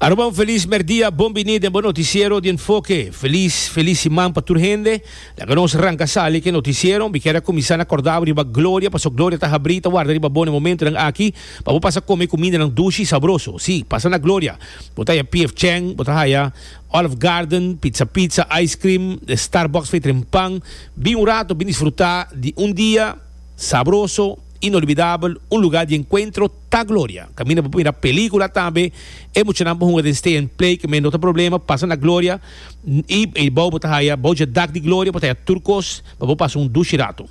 Aruba un felis merdia, bon bini den bo noticiero di Enfoke. Felis, felis siman pa tur hende. Laga nos ranca sali cu e noticiero. Mi kier a cuminsa na corda bo riba gloria, paso gloria ta habri y ta warda riba bo na e momentonan aki, pa bo pasa come cumindanan dushi y sabroso. Si, pasa na gloria. Bo ta haya P.F. Chang, bo ta haya Olive Garden, Pizza Pizza, Ice Cream, den Starbucks fey tren pan. Bin un rato, bin disfruta di un dia sabroso, inolvidabel, un lugar di encuentro. Ta Gloria. Caminda bo por mira pelicula tambe. E muchanan por hunga den stay and play que men no ta problema. Pasa na Gloria y e bao bo ta haya bao dje dak di Gloria bo ta haya tur cos pa bo pasa un dushi rato.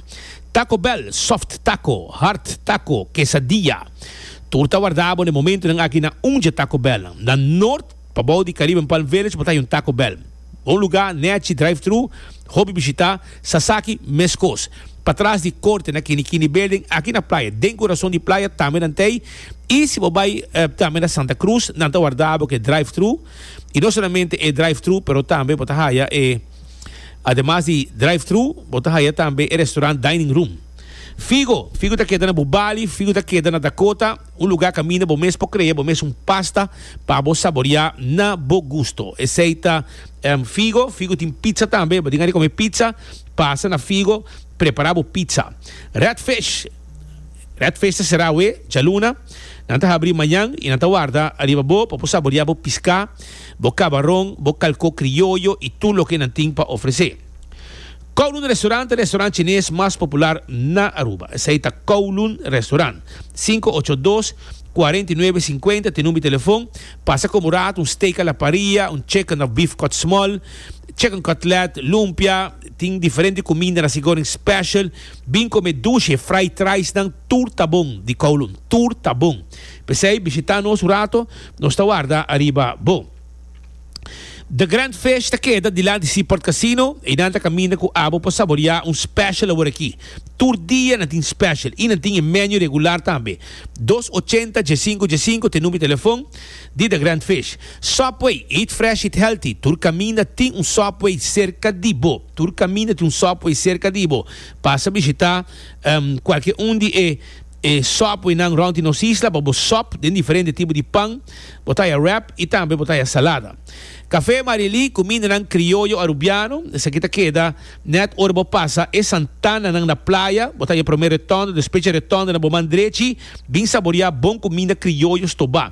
Taco Bell, soft taco, hard taco, quesadilla. Tur ta warda bo na e momentonan aki na un dje Taco Bell. Na Noord. Pabou di Caribe Palm Village bo ta yon Taco Bell. Bon lugá, nèchi, drive-thru, hopi bishitá, sasaki, meskos. Patras di Korte na Kini Kini Building, aki na playa, den kurason di playa, tambe nan ta ei. I si bo bai tambe na Santa Cruz, nan ta warda bo ku e drive-thru. I no solamente e drive-thru, pero tambe bo ta haya e, ademas di drive-thru, bo ta haya tambe e restaurant dining room. Figo, figo ta keda na Bubali, figo ta keda na Dakota. Un lugá kaminda bo mes por krea bo mes un pasta pa bo saboreá na bo gusto. Esei ta Figo. Figo tin pizza tambe. Bo tin ari kome pizza? Pasa na Figo prepará bo pizza. Red Fish. Red Fish ta será awe djaluna. Nan ta habrí mañan i nan ta warda ariba bo pa bo saboreá bo piská, bo kabaron, bo kalkó krioyo i tur loke nan tin pa ofresé. Kowloon Restaurant e restaurant chines mas popular na Aruba. Esei ta Kowloon Restaurant. Sinku ocho dos, kuarenta i nuebe sinkuenta t'e number di telefon. Pasa komo rat, un steak a la parrilla, un chicken of beef cut small, chicken cutlet, lumpia, tin diferente kuminda na Sigoreng special. Bin kome dushi e fried ricenan, tur ta bon di Kowloon, tur ta bon. P'esei bishita nos un rato, nos ta warda ariba bo. The Grand Fish ta keda dilanti Seaport Casino y nan ta caminda cu abo pa saborea un special awor aki. Tur dia nan tin special y nan tin e menu regular tambe. Dos ochenta dje sinku dje sinku ta e number telefon di The Grand Fish. Subway, eat fresh, eat healthy, tur caminda tin un Subway cerca di bo. Tur caminda tin un Subway cerca di bo. Pasa bishita cualkier un di e. E sòpwinan rònt di nos isla pa bo sòp den diferente tipo di pan, bo taya wrap i tambe bo taya salada. Kafé Marieli ku mindanan krioyo arubiano, esaki ta keda nèt ora bo pasa e santananan na playa, bo taya promé retònde, despecha retònde na bo man drechi, bin saboriá bon ku minda krioyo stobá.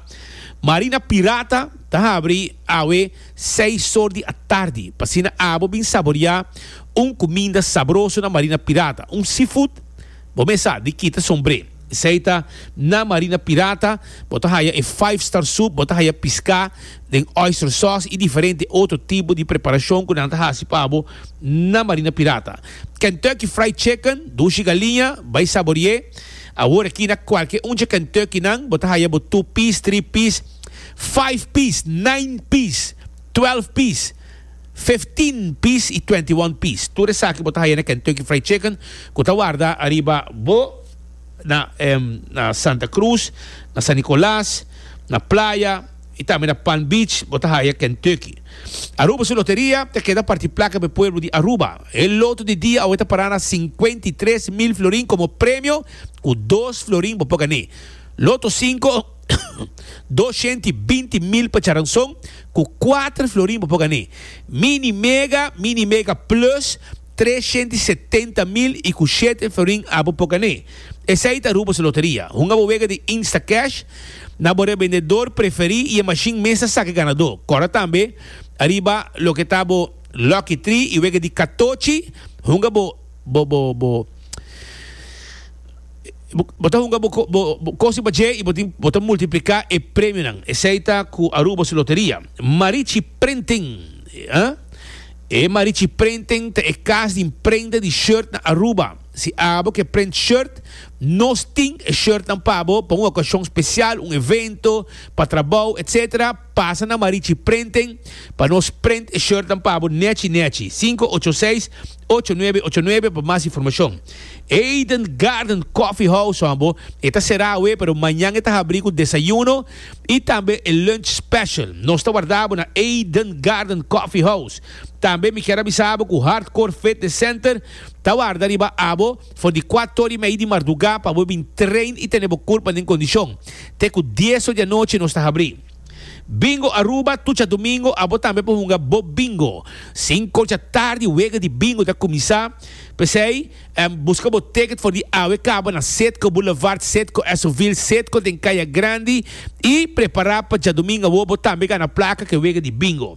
Marina Pirata ta habri awe seis sor di atardi, p'asina abo bin saboriá un kuminda sabroso na Marina Pirata, un seafood, Bo mes sa di kita sombré. Esei ta na Marina Pirata, bo ta haya e Five Star Soup, bo ta haya piská den oyster sauce i diferente otro tipo di preparashon ku nan ta hasi pa bo na Marina Pirata. Kentucky Fried Chicken, Dushi Galiña, bai sabori'é. Awor aki na kualke un dje Kentucky nan bo ta haya bo two piece, three piece, five piece, nine piece, twelve piece. 15 pis y 21 pis. Tur esaki bo ta haya na Kentucky Fried Chicken cu ta warda ariba bo na na Santa Cruz, na San Nicolas, na Playa y tambe na Palm Beach bo ta haya Kentucky. Aruba su loteria ta keda parti placa pa e pueblo di Aruba. E loto di dia awe ta para na cincuenta y tres mil florin como premio cu dos florin bo por gané. Loto cinco. Dos shent i binti mil pa charanson ku kuater florin bo por gané. Mini mega, mini mega plus, tres shent i setenta mil i ku shete florin a bo por gané. Esei ta Aruba's Loteria. Hunga bo wega di Instacash na bo rebendedor preferí i e mashin mes ta saka e ganadó. Kòrda tambe ariba loke ta bo Lucky Tree i wega di katochi hunga bo. Bo ta hunga bo kosin pa dje y bo ta multiplica e premionan. Esey ta cu Aruba su loteria. Marichi Printing, E Marichi Printing ta e cas di imprenta di shirt na Aruba. Si abo ke print shirt, nos tin e shirtnan pa bo pa un ocasion special, un evento, pa trabou, etc. Pasa na Marichi Printing pa nos print e shirtnan pa bo nechi nechi, sinku ocho seis, ocho nuebe ocho nuebe pa mas informashon. Eden Garden Coffee House hoan bo e ta será awe pero mañan e ta habrí ku desayuno i tambe e lunch special. Nos ta warda bo na Eden Garden Coffee House. Tambe mi kier a bisa bo ku Hardcore Fitness Center ta warda riba abo. For di kuato ori mei di mardugá pa bo bin train i tene bo kurpa den kondishon. Te ku dieso di anochi nos ta habrí. Bingo Aruba, Tucha Domingo, Abo tambe por hunga bo bingo. Sinku ocha tardi wega di bingo ta kuminsá. P'esei, buska bo ticket for di awe kaba na Citgo Boulevard, Citgo Esso-Ville, Citgo den Kaya Grandi i prepará pa djadumingu awor bo tambe gana plaka ke wega di bingo.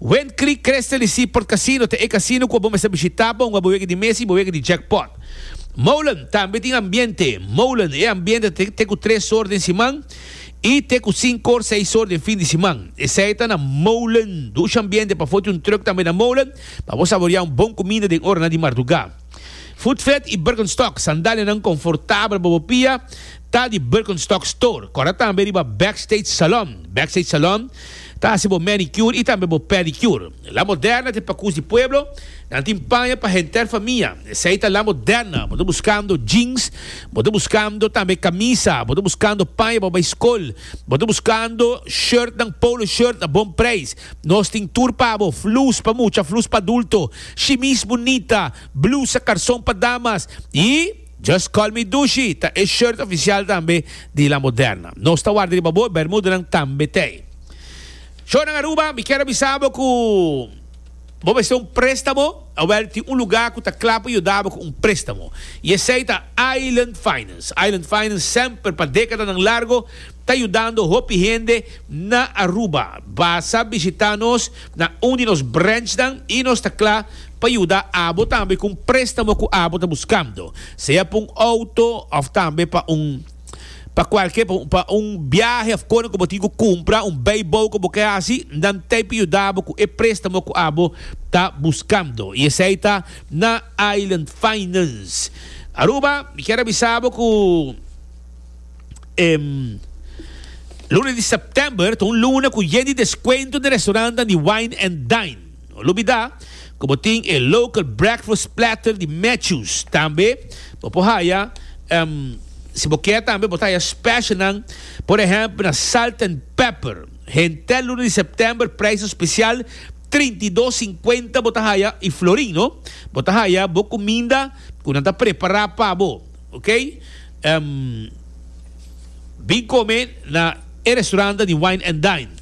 Win Creek Crystal y Seaport Casino ta e casino cu abo mester bishita pa hunga bo wega di mesa y bo wega di jackpot. Molen tambe tin ambiente. Molen e ambiente ta te cu tres or den siman y te cu cinco or, seis or den fin di siman. Esey ta na Molen. Dusha ambiente pafo tin un truck tambe na Molen pa bo saborea un bon cuminda den oranan di marduga. Footfed i Birkenstock, sandalianan konfortabel pa bo pia, ta di Birkenstock Store. Kòrda tambe riba Backstage Salon. Backstage Salon ta hasi bo manicure i tambe bo pedicure. La Moderna te pakús di pueblo, nan tin paña pa henter famia. Esei ta La Moderna. Bo ta buskando jeans, bo ta buskando tambe kamisa, bo ta buskando paña pa bai skol, bo ta buskando shirtnan, polo shirt a bon preis. Nos tin tur pa bo, flus pa mucha, flus pa adulto, shimis bunita, blusa, karson pa damas y Just Call Me Dushi ta e shirt oficial tambe di La Moderna. Nos ta warda riba bo, bermudanan tambe t'ey. Shownan Aruba, mi kier a bisa bo cu bo mester un prestamo, awel tin un lugar cu ta cla pa yuda bo cu un prestamo y esey ta Island Finance. Island Finance semper pa decadanan largo. ta yudando hopi hende na Aruba. Basa bishita nos na un di nos branchnan i nos ta kla pa yuda abo tambe ku un préstamo ku abo ta buskando, sea pa un outo òf tambe pa un pa kualke pa un biahe òf kona ku bo tin ku kumpra un beibou ku bo ke hasi, nan ta p'e yuda bo ku e préstamo ku abo ta buskando. I esei ta na Island Finance Aruba. Mi kier a bisa bo ku. E Luna di September ta un luna ku yen di deskuento den restorannan di Wine and Dine. No lubidá ku bo tin e local breakfast platter di Matthews. Tambe bo por haya, si bo ke tambe, bo ta haya specialnan, por ehèmpel na Salt and Pepper. Henter Luna di September preisnan spesial trinta i dos sinkuenta bo ta haya i florin, no. Bo ta haya bo kuminda ku nan ta prepará pa bo. Ok em bin come na e restauranta di Wine and Dine.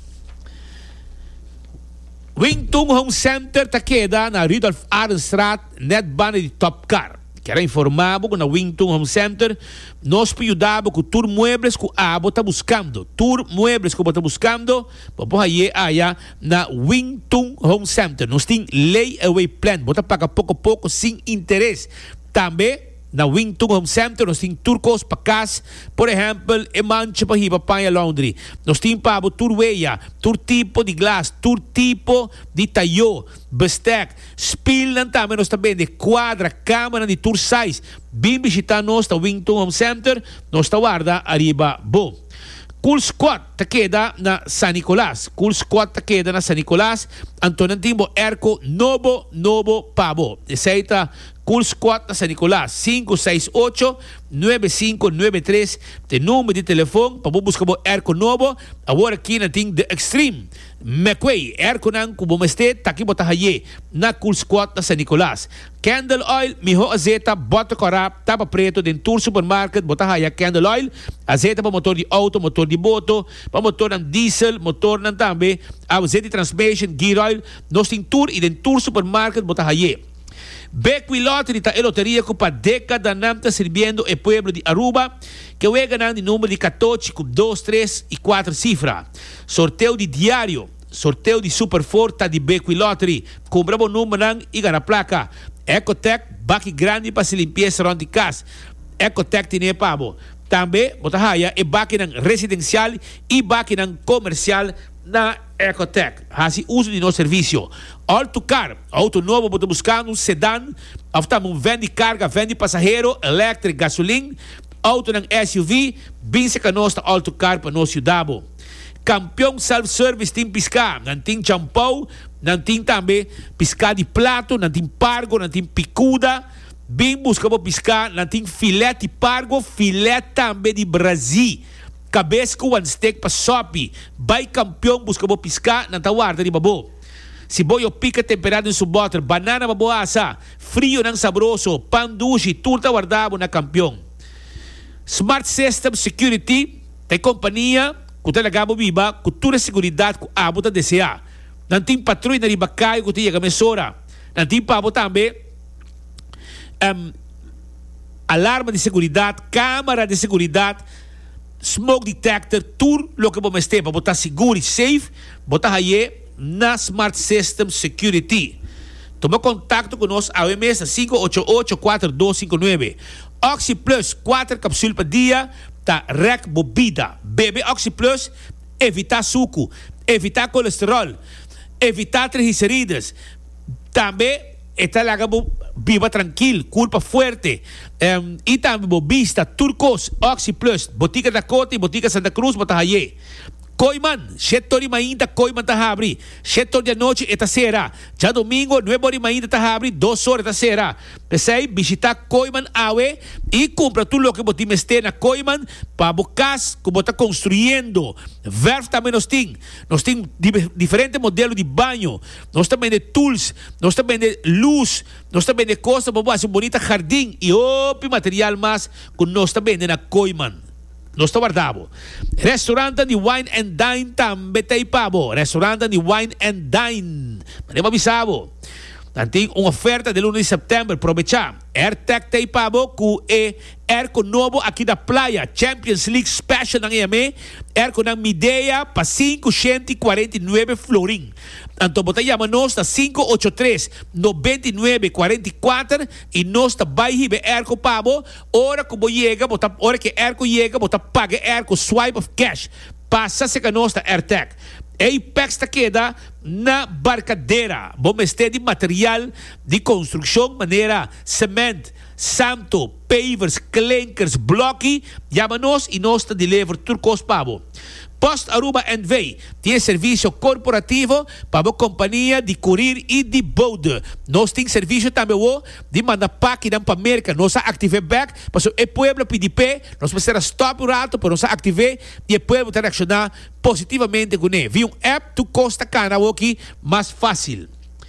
Wing Tung Home Center ta keda na Rudolf Arenstraat net banda di Top Car. Kier a informa bo cu na Wing Tung Home Center nos por yuda bo cu tur muebles cu abo ta buscando. Tur muebles cu bo ta buscando bo por haye aya na Wing Tung Home Center. Nos tin layaway plan, bo ta paga poco poco sin interes. Tambe. Na Wington Home Center nos tin tur cos pa cas, por ehempel e mancha pa hiba paña laundry. Nos tin pa bo tur weya, tur tipo di glas, tur tipo di tayo, bestek, spilnan tambe nos ta bende cuadra, camanan di tur size. Bin bishita nos na Wington Home Center, nos ta warda ariba bo. Cool Squad ta keda na San Nicolas, Cool Squad ta keda na San Nicolas, anto nan tin bo airco nobo nobo pa bo. Esey ta. Cool Squad na San Nicolas, sinku seis ocho, nuebe sinku nuebe tres t'e number di telefon pa bo buska bo airco nobo. Awor aki nan tin The Extreme, Mecway, airconan cu bo mester ta aki bo ta hay'e na Cool Squad na San Nicolas. Candle Oil, miho azeta, bota cora, tapa preto den tur supermarket bo ta haya Candle Oil, azeta pa motor di auto, motor di boto, pa motornan diesel, motornan tambe, awzet di transmation, gear oil, nos tin tur y den tur supermarket bo ta hay'e. Bequi Lottery ta e loteria cu pa decadanan ta sirbiendo e pueblo di Aruba cu weganan di number di catochi cu dos, tres y cuater cifra. Sorteo di diario, sorteo di Super Four ta di Bequi Lottery. Cumpra bo numbernan y gana placa. Ecotec, baki grandi pa haci limpieza rond di cas, Ecotec tin e pa bo. Tambe bo ta haya e bakinan residencial y bakinan comercial na. Ecotec haci uso di nos servicio. Ol tu car auto nobo bo ta buscando un sedan of tambe un ven di carga, ven di pasahero, electric, gasolin, autonan SUV, binse ca nos ta ol tu car pa nos yuda bo. Campeon Self Service tin pisca, nan tin champou, nan tin tambe pisca di plato, nan tin pargo, nan tin picuda. Bin busca bo pisca, nan tin filet di pargo, filet tambe di brazi. Cabes cu one stick pa sopi. Bay campeon busca bo pisca, nan ta warda riba bo. Si bo yo pica tempera den su boter, banana pa bo asa, frionan sabroso, pan dushi, tur ta warda bo na campeon. Smart System Security ta e compania cu ta laga bo biba cu tur e seguridad cu abo ta desea. Nan tin patrui na riba cayo cu ta yega mesora. Nan tin pa bo tambe alarma di seguridad, camera di seguridad. Smoke detector tur loke bo mester pa bo ta sigur y safe bo ta haye na Smart System Security. Tuma contacto cu nos awe mes na sinku ocho ocho kuater dos sinku nuebe. Oxi Plus kuater capsul pa dia ta rek bo bida. Bebe Oxi Plus, evita suku, evita colesterol, evita trigicerides. Tambe e ta laga bo biba trankil, kulpa fuerte i tambe bo bista tur kos. Oxi Plus, Botica Dakota i Botica Santa Cruz bo ta haié. Koiman, Shetor di mainta Koiman ta habri, Shetor di anochi e ta sera. Djadomingo, nuebe ora di mainta ta habri, dos ora e ta sera. P'esei, bishitá Koiman awe i kumpra tur loke bo tin mester na Koiman pa bo kas ku bo ta konstruyendo. Verf tambe nos tin. Nos tin diferente modelo di baño. Nos ta bende tools, nos ta bende luz, nos ta bende cosnan pa bo haci un bonita jardin y hopi material mas cu nos ta bende na Kooiman. Nos ta warda bo. Restaurantnan di Wine and Dine tambe ta ipa bo. Restaurantnan di Wine and Dine. M'a deba bisa bo. Nan tin un oferta del uno di September. Probecha. Airtech ta ipa bo cu e airco nobo aki na Playa. Champions League Special nan eyam'e. Airconan Midea pa sinku shenti cuarenta y nuebe florin. Anto bo ta yama nos na sinku ocho tres noventa i nuebe kuarenta i kuater i nos ta bai hiba e èrko pa bo. Ora ku bo yega bo ta ora ku e èrko yega bo ta paga e èrko swipe of cash. Pasa seka nos na Airtech. Ey pèks ta keda na Barcadera. Bo mester di material di konstrukshon manera semènt. Santo, pavers, klinkers, blokki, yama nos y nos ta deliver tur kos pa bo. Post Aruba NV. tin e servisio korporativo pa bo kompania di kurir y di bode. Nos tin servisio tambe wo di manda pakinan pa Merka. Nos a aktiv'é bèk pasobra e pueblo a pidi p'é. Nos mester a stòp un rato pero nos a aktiv'é y e pueblo ta reakshoná positivamente kuné. Via un app tur kos ta kana awoki mas fásil.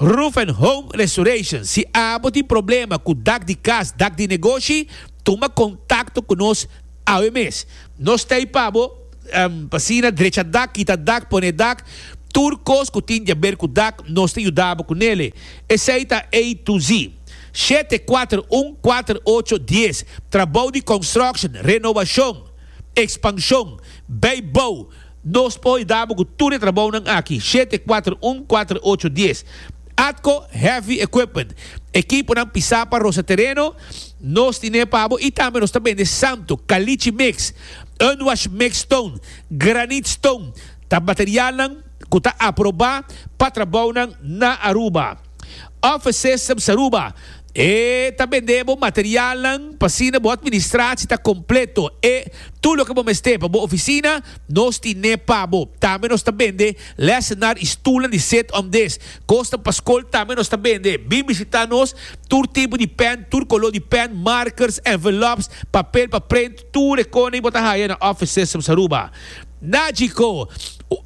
Roof and Home Restoration, Si abo tin problema ku dak di kas, dak di negoshi, tuma kontakto ku nos awe mes. Nos ta ei pa bo, pa asina drecha dak, kita dak, pone dak, tur kos ku tin diaber ku dak nos ta yuda bo ku nele. Esei ta A to Z. Shete kuater un kuater ocho dies, Trabou di construction, renovashon, ekspanshon, bei bou, Nos por yudabo cu tur e trabounan aki, shete, cuater, un, cuater, ocho, dies. Atco Heavy Equipment, ekiponan pisá pa rosa tereno, nos tin'é pa bo y tambe nos ta bende santo, caliche mix, unwash mix stone, granite stone, ta materialnan cu ta aprobá pa trabounan na Aruba. Offices Saruba. E ta bend'é bo materialnan pa asina bo atministraci ta completo. E tur loke bo mester pa bo oficina, nos tin n'é pa bo. Tambe nos ta bende lesenar i stulnan di sit om des. Cosnan pa scol tambe nos ta bende. Bin bishita nos, tur tipo di pen, tur color di pen, markers, envelops, papel pa print, Tur e kona y bo ta haya na Office Systems Aruba. Nagico,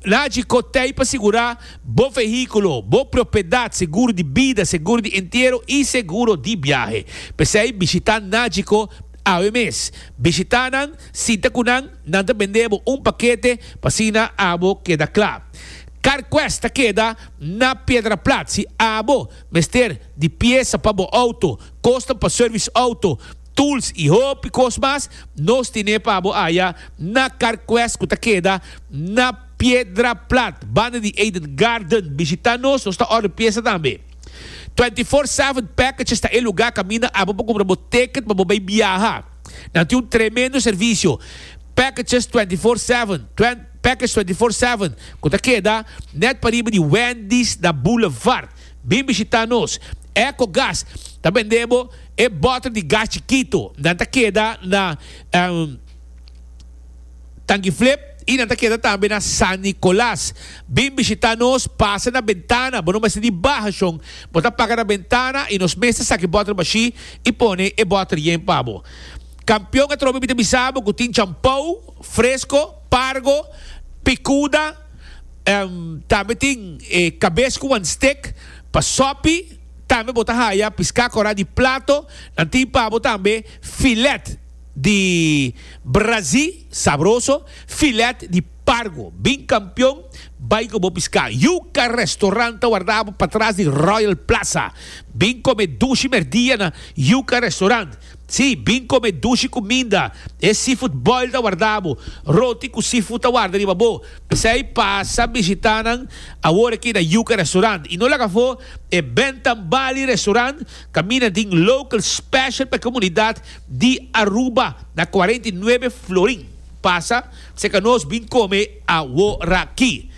Nagico ta ey pa sigura bo vehiculo, bo propiedad, seguro di bida, seguro di entiero y seguro di biahe. P'esey bishita Nagico awe mes. Bishita nan, sinta cu nan, nan ta bende bo un pakete pa asina abo keda cla. Carquest ta keda na Piedraplat. Si abo mester di piesa pa bo auto, cosnan pa service auto, tools y hopi cos mas nos tine pa bo haya na Carquest cu ta keda na Piedra Plat banda di Eden Garden. Bishita nos, nos ta order pieza tambe. Twenty Four Seven Packages ta e lugar caminda abo pa cumpra bo ticket pa bo bay biaha. Nan tin un tremendo servicio Packages Twenty Four Seven, Package Twenty Four Seven, cu ta keda net pariba di Wendy's na Boulevard. Bin bishitá nos. Eco Gas ta bend'é bo e bòtel di gas chikitu. Nan ta keda na Tangiflip i nan ta keda tambe na San Nicolas. Bin bishitá nos, pasa na bentana. Bo no mester di baha shon. Bo ta paga na bentana i nos mes ta saki bòtel bashí i pone e bòtel yen pa bo. Kampion atrobe mi ta bisa bo ku tin champou, fresko, pargo, pikuda, Tambe tin e cabes cu wan steak pa sopi. Tambe bo ta haya pisca cora di plato. Nan tin pa bo tambe filet di brazi, sabroso, filet di pargo. Bin campeon, bay cu bo pisca. Yuca Restaurant ta wardabo patras di Royal Plaza. Bin come dushi merdia na Yuca Restaurant. Sí, bin kome dushi kuminda. E seafood boil ta warda bo. Roti ku seafood ta warda riba bo. P'esei pasa bishitá nan awor aki na Yuca Restaurant. I no laga afó, e Ben Tambali Restaurant kaminda di un local special pa e komunidat di Aruba na cuarenta y nueve Florin. Pasa serka nos bin kome aworaki.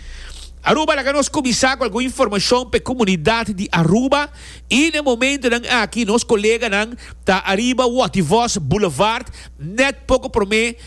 Aruba, laga nos kuminsá ku algun informashon pa e komunidat di Aruba. I na momentunan aki nos koleganan ta ariba Wativos Boulevard net poko prome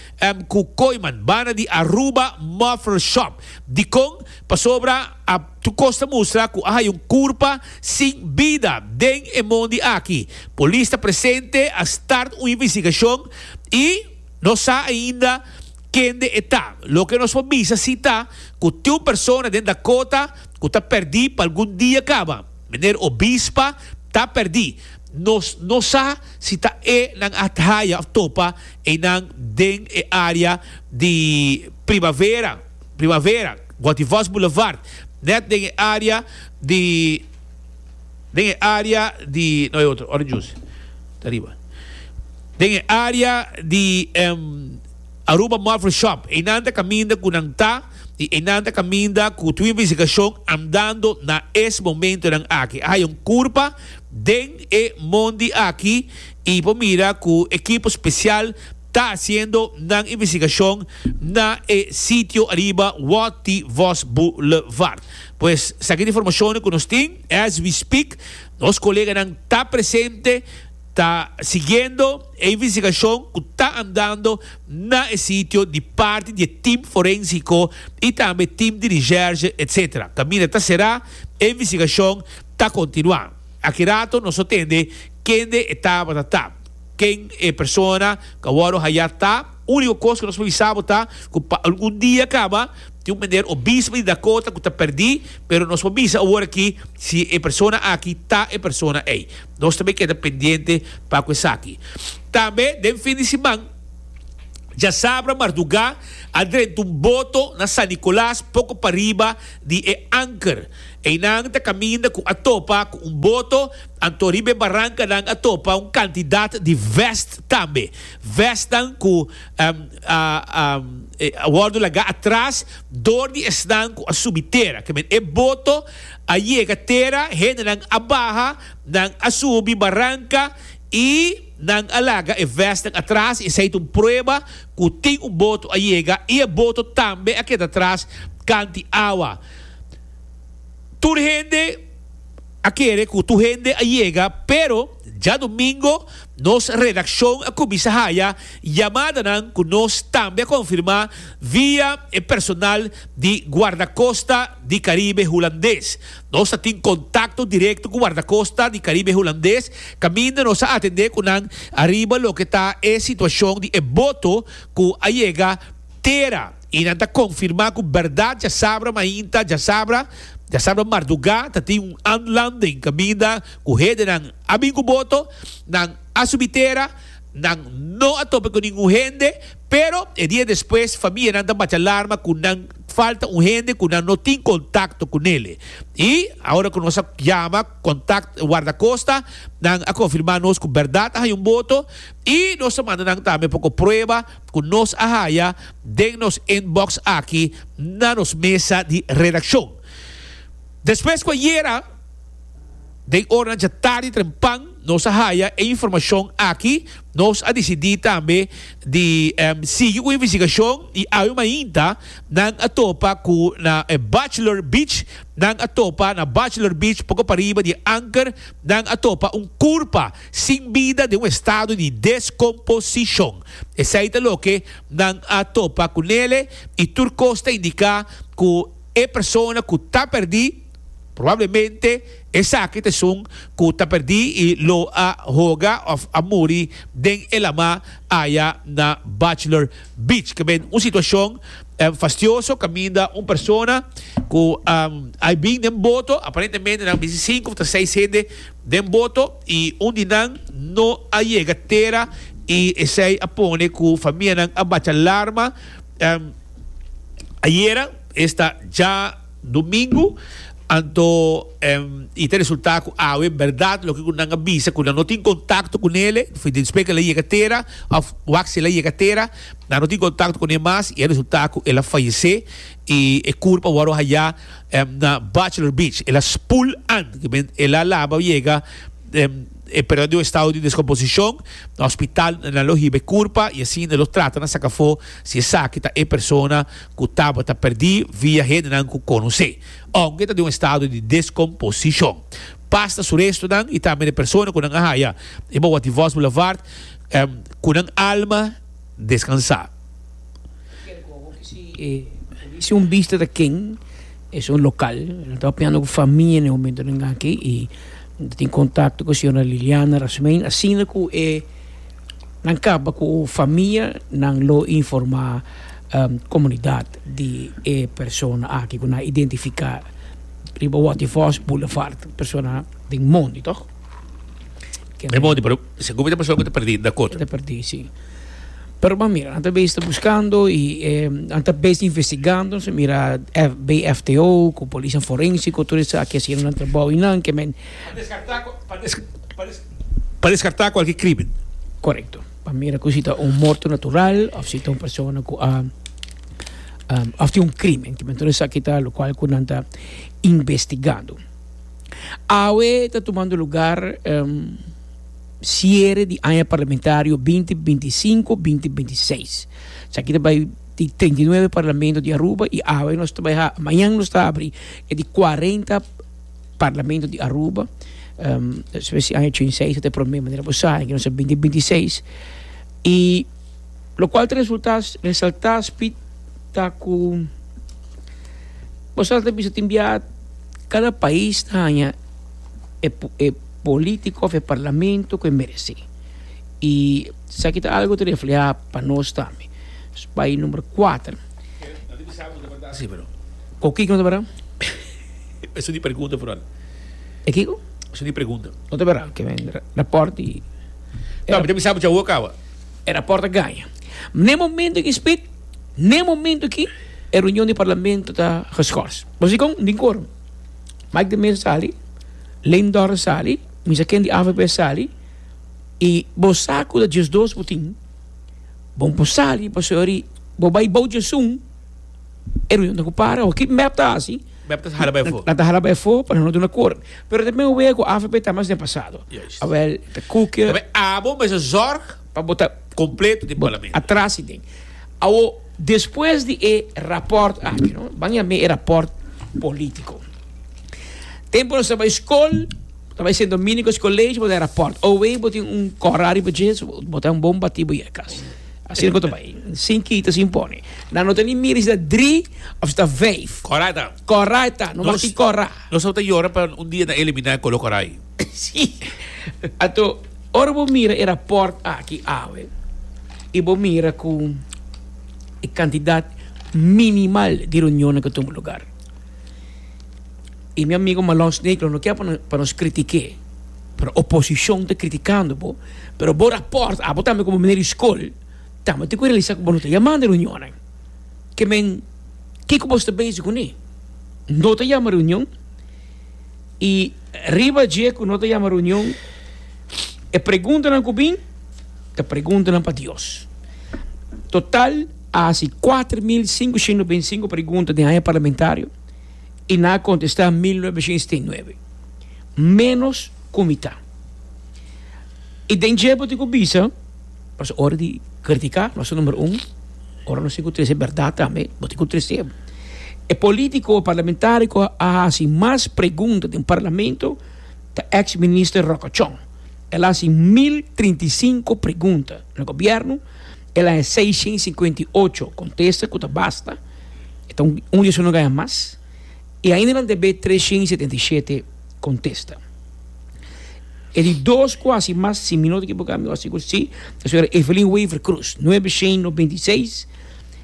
ku Kooiman banda di Aruba Muffler Shop. Dikon? Pasobra a tukos ta mustra ku a haya un kurpa sin bida den e mondi aki. Polis ta presente, a start un investigashon i no sa ainda kende e ta. Loke nos por bisa si ta ku tin un persona den Dakota ku ta pèrdí pa algun dia kaba. Meneer Obispa ta perdi. Nos no sa si ta e nan a haya of topa eynan den e area di Primavera, Primavera, Goitevos Boulevard, net den e area di, den e area di, no e otro, orange juice ta riba, den e area di. Aruba Mofle Shop, einan ta caminda cu nan ta y einan ta caminda cu tu investigacion andando na es momentonan aki. A haya un curpa den e mondi aki y por mira cu equipo special ta haciendo nan investigacion na e sitio ariba Watty Vos Boulevard. Pues sa ki ta informacionnan cu nos tin. As we speak, nos coleganan ta presente. Ta siguiendo e investigacion cu ta andando na e sitio di parti di e team forensico y tambe team di recherche etc. Camina ta cera, e investigacion ta continua. Aki rato nos no tende kende e tabata ta, ken e persona cu a wordo haya ta, unico cos cu nos por bisa bo ta cu pa algun dia caba tin un meneer Obispo di Dakota cu ta perdi pero nos por bisa awor aki si e persona aki ta e persona ey. Nos tambe keda pendiente pa cu esaki. Tambe den fin di siman djasabra mardugá a drenta un boto na San Nicolas poco pariba di e Anker. Eynan ta caminda cu a topa cu un boto, anto riba e barancanan a topa un cantidad di vest tambe. Vestnan cu a wordo lagá atras door di esnan cu a subi tera. Ke men e boto. a yega tera, hendenan a baha, nan a subi baranka i nan a laga e vèstnan atras. Esei ta un prueba ku tin un boto a yega i e boto tambe a keda atras kanti awa. Tur hende a kere ku tur hende a yega, pero. Djadumingo nos redaccion a cuminsa haya yamadanan cu nos tambe a confirma via e personal di Guardacosta di Caribe Hulandes. Nos a tin contacto directo cu Guardacosta di Caribe Hulandes caminda nos a atende cu nan ariba loke ta e situacion di e boto cu a yega tera, i nan ta konfirmá ku bèrdat djasabra mainta, djasabra, djasabra mardugá ta tin un anlanding kaminda ku hedenan a bin ku boto, nan a subi tera, nan no a tope ku ningun hende, pero e dia despues famianan ta bacha larma ku nan falta un hende ku nan no tin kontakto ku nele. I ora ku nos a yama kontakt wardakosta, nan a konfirmá nos ku bèrdat a haña un boto i nos a manda nan tambe poko prueba, cu nos a haya den nos inbox aki na nos mesa di redaccion. Despues cu a yera den oranan dja tardi trempan nos a haya e informacion aki, nos a dicidi tambe di sigui cu investigacion y awe mainta nan a topa cu na Bachelor Beach, nan a topa na Bachelor Beach poco pariba di Anker, nan a topa un curpa. sin bida den un estado di deskomposishon. Esei ta loke nan a topa ku nele i tur kos ta indiká ku e persona ku ta pèrdí, probablemente esaki ta esun ku ta pèrdí i lo a hoga òf a muri den e lama aya na Bachelor Beach. Ta ben un situashon fastioso kaminda un persona ku a bin den boto, aparentemente nan a misi sinku òf ta seis hende, Den boto y un di nan no a yega tera y esey a pone cu famianan a bacha larma. Ayera esta dja domingo anto y ta resulta cu awe berdad loke cu nan a bisa cu nan no tin contacto cu nele, den spek el a yega tera of wak si el a yega tera, nan no tin contacto cu ne mas y a resulta cu el a fayece. y e curp a worde haya na Bachelor Beach. El a spoel an kimen el a laba yega e periodo di estado di descomposicion. Na hospital nan lo hiba e curpa y asina e lo trata na saca afo si esaki ta e persona cu tabata perdi via hendenan cu conoce. Aunke ta den un estado di descomposicion, pas na su restonan y tambe na e persona cu nan a haya. E bawaTivo's Boulevard cu nan alma descansa. Si un bista ta ken es un lokal no ta piano ku famia ne momento den aki i ta tin kontakto ku señora Liliana Rasmijn asina ku e nan kaba ku famia nan lo informá komunidat di e persona aki ku nan a identifiká riba Waterfors Boulevard persona den Mondi toh. Si Gumi ta persona ku ta perdí, da koto. Ta perdí, sí. Pero bo a mira, nan ta bezig ta buskando i e nan ta bezig ta investigando. Nos a mira F, BFTO ku polisnan forénsiko, tur esaki a hasiendo nan trabou i nan ke men. Pa deskartá ku, pa des, pa des, pa deskartá kualke krímen. Korekto. Pa mira ku si ta un morto natural òf si ta un persona ku a òf tin un krímen. Tur esaki ta lokual ku nan ta investigando. Awe ta tumando lugar siere di aña parlamentario binti binti i sinku binti binti i seis esaki ta bai di treinta i nuebe parlamento di Aruba i awe nos ta bai ha mañan nos ta abri e di kuarenta parlamento di Aruba despues di aña ochenta i seis ta e prome manera ku bo sa binti binti i seis i Lo cual ta resulta resalta Speed ta cu boso ta bisa tin bia cada pais ta haya e e politico of e parlamento cu e merece y esaki ta algo ta refleha pa nos tambe bai number cuater. Cu kiko no ta bira? Eso di pregunta Fernando. E kiko? Eso di pregunta. No ta bira, ke men raport di. No, mi ta bisa bo dja hoor caba. E raport a gaña. N'e momento aki spit, n'e momento aki e reunion di parlamento ta geschors. Bo si kon? Den quorum. Mike de Meza sali, Leyndor a sali, Misa Ken di avp a sali, y bo sa cu ta djesdos bo tin, bo por sali pasobra di bo bay bou djesun. e ruido ta ku para awa. Ki mep ta hasi? Mep ta hala bai afo. Nan ta hala bai afo pa nan no duna kor. Pero ta men wea ku afp ta mas den pasado. Juist. Awel ta kuke. Pape abo mester zorg pa bo ta kompleto den parlamento. Atras i den. Awo, despues di e rapòrt aki, no, ban yam'é e rapòrt polítiko. Tempu nos ta bai skol, bo ta bai Sint Domingo Skolege, bo ta e rapòrt. Owei bo tin un kòrá riba dje, so bo ta un bon batí bo i a kas. Asina ku ta bai, sin kita, sin pone. Nan no ta ni mira si ta dri of si ta vijf. Kora ta. Kora e ta, no mas ki kora. Nos tabata yora pa un dia nan eliminá e kolo kora ei. Sí. Anto, ora bo mira e rapòrt aki awe i bo mira ku e kantidat minimal di reunionnan ku tuma lugar, y mi amigo Malon Snake lo no kier pa nos critiqué, pero oposición ta criticando bo, pero bo rapport abo tambe como meneer di school tambe tin cu realisa cu bo no ta yama na reunionan. Ke men kico bo sta bezig cu ne? No ta yama reunion y riba dje cu no ta yama reunion e preguntanan cu bin ta preguntanan pa Dios. Total a haci cuater mil cinco shenda beinticinco pregunta den aña parlamentario. i nan a kontestá mil novecientos sesenta i nueve, ménos ku mi ta. I den dje bo tin ku bisa, pasobra ora di kritiká nos ta número un, ora nos tin ku trese bèrdat tambe bo tin ku trese. E polítiko, e parlamentáriko a hasi mas pregunta den parlamento ta èks minister Ròkò Chong. El a hasi mil trinta i sinku pregunta na gobièrnu. El a e seishen i sinkuenta i ocho kontesta ku ta basta, e ta un di esun no gaña mas, i ainda nan ta be treshen i setenta i shete kontesta. E di dos ku hasi mas, si mi no ta ekibokado mi hasi ku si, ta Señora Evelyn Wever Cruz, nuebe shen noventa i seis,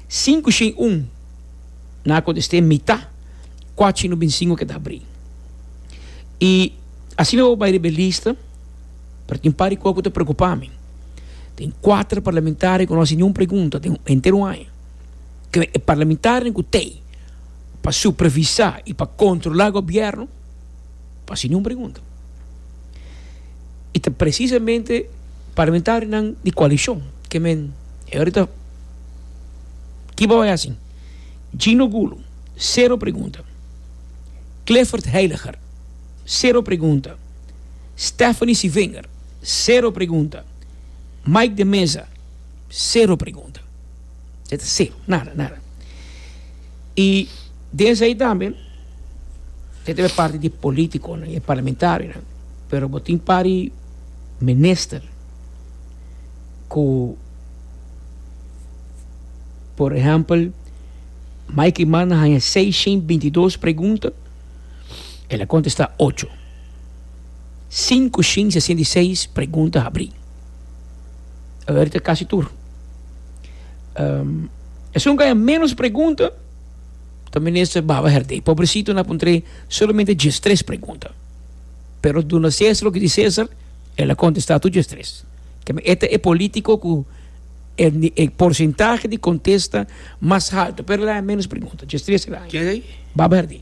sinku shen i un nan a kontest'é mitá, kuat shen i noventa i sinku a keda abrí. I asina bo bai riba e lista. pero tin un par di cosa cu ta preocupa mi. Tin cuater parlamentario cu no haci niun pregunta den un entero aña. Ken e parlamentarionan cu t'ey pa supervisa y pa controla e gobierno? No haci niun pregunta. Y ta precisamente parlamentarionan di coalicion que men ayorita ki bo a bay haci? Gino Gulu, cero pregunta. Clifford Heiliger, cero pregunta. Stephanie Civinger, Sero pregunta. Mike de Meza, Sero pregunta. E ta sero, nada, nada. I den esei tambe e ta e parti di e politiconan, e parlamentarionan, pero bo tin par di minister cu por ehempel Mikey manda haña seis shin bintidos pregunta, el a contesta ocho. Sinku shinsia sienta i seis pregunta habrí. Aver ta kasi tur. Esun kaya ménos pregunta ta minister baba herdé. Pobrecito na puntr'é solamente djes tres pregunta. Pero duna César loke di César, el a kontestá tur djes tres. Keme e ta e polítiko ku e e porsentahe di kontesta mas haltu, pero el a haya ménos pregunta. Djes tres el a haya. Baba herdé.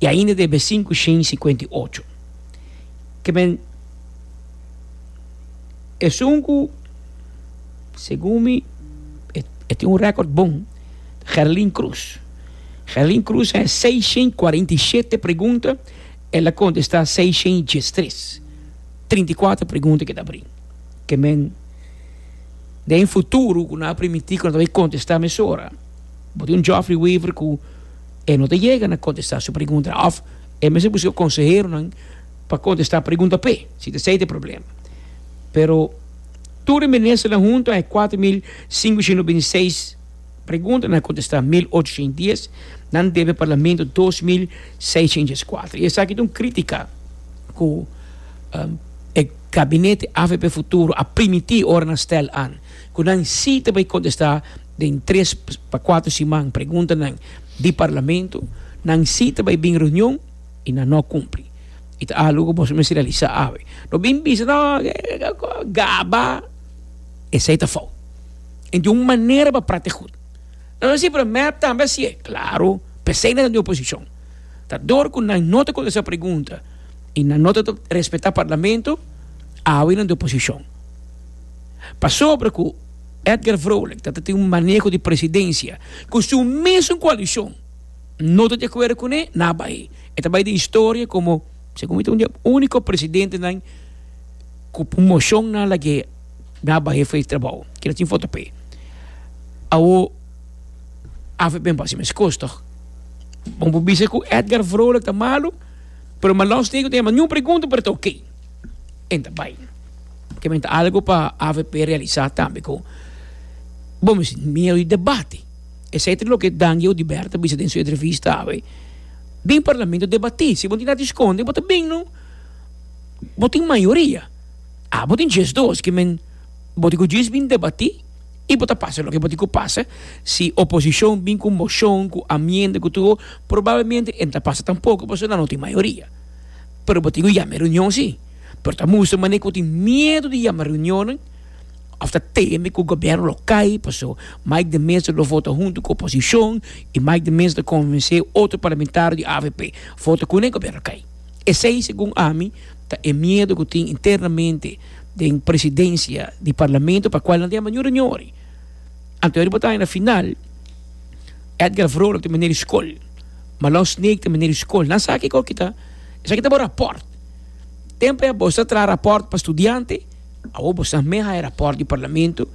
i ainda den besin ku shin sikuenta i ocho. Kemen esun ku segun mi e tin un rèkòrt bon, Gerlin Cruz. Gerlin Cruz a hesé seis shin kuarenta i shete pregunta, el a kontestá seis shin dies tres. Trinta i kuater pregunta ke ta brin. Kemen den e futuro ku nan a permití ku nan ta bin kontestá mesora, bo tin un Geoffrey Wever ku. E no ta yega na kontestá su pregunta òf e mester buska konseheronan pa kontestá pregunta p'e si ta esei ta e problema. Pero tur e ministernan huntu a e kuater mil sinkocientos binti i seis pregunta nan a kontestá mil ocho sien dies, nan debe parlamento dos mil seisien dies kuater. I esaki ta un krítika ku e gabinete avp Futuro a primití ora nan stèl an ku nan sí ta bai kontestá. Den tres pa kuater siman preguntanan di parlamento nan si ta bai bin reunion y nan no cumpli. Y ta algo cu boso mester realisa awe. No bin bisa no gaba, esey ta fout. Enti un manera pa prata e goed. Nan a si pero mep tambe a sie. Claro, pesey nan ta den oposicion. Ta dor cu nan no ta contesta pregunta y nan no ta respeta parlamento, awe nan den oposicion. Pasobra cu. Edgar Vrolijk ta ta tin un maneho di presidensia ku su mesun koalishon no ta di akuerdo kuné, nan a bai. E ta bai den historia komo, segun mi, un di e úniko presidentenan ku moshon nan lag'é, nan a bai fei trabou. Ki ta tin foto p'e. Awo avp a base mes kos tòg. Bo por bisa ku Edgar Vrolijk ta malu, pero Malos Negro ta yama niun pregunta, pero ta oké. en ta bai. Kimen ta algo pa avp realisa tambe ku bo mi sinti miedu di debate. Esei ta loke Dangie Oduber ta bisa den su entrevista awe, den parlamento debati, si bo no tin nada di skonde bo ta bin no, bo tin mayoria, abo tin djes dos kimen bo tin ku djis bin debati i bo ta pasa loke bo tin ku pasa, si oposishon bin ku moshon, ku amienda ku tur, probablemente e no ta pasa tampoko pasobra nan no tin mayoria. Pero bo tin ku yama e reunion si, pero ta mustra manera ku bo tin miedu di yama reunionnan òf ta teme ku gobièrnu lo kai paso Mike de Meza lo vota huntu ku oposishon i Mike de Meza ta konvensé otro parlamentario di avp vota kuné gobièrnu a kai. Esei segun ami ta e miedu ku tin internamente den presidensia di parlamento pa kual nan ta yama niun reunion wòrdu. Anto yari bo ta haña na final Edgar Vrolijk ta miner di skol, Malon Snake ta miner di skol nan sa kiko kita. Esaki ta bo rapòrt. Tempe bo sa traha rapòrt pa studiante, awor bo sa mei haya rapòrt di parlamento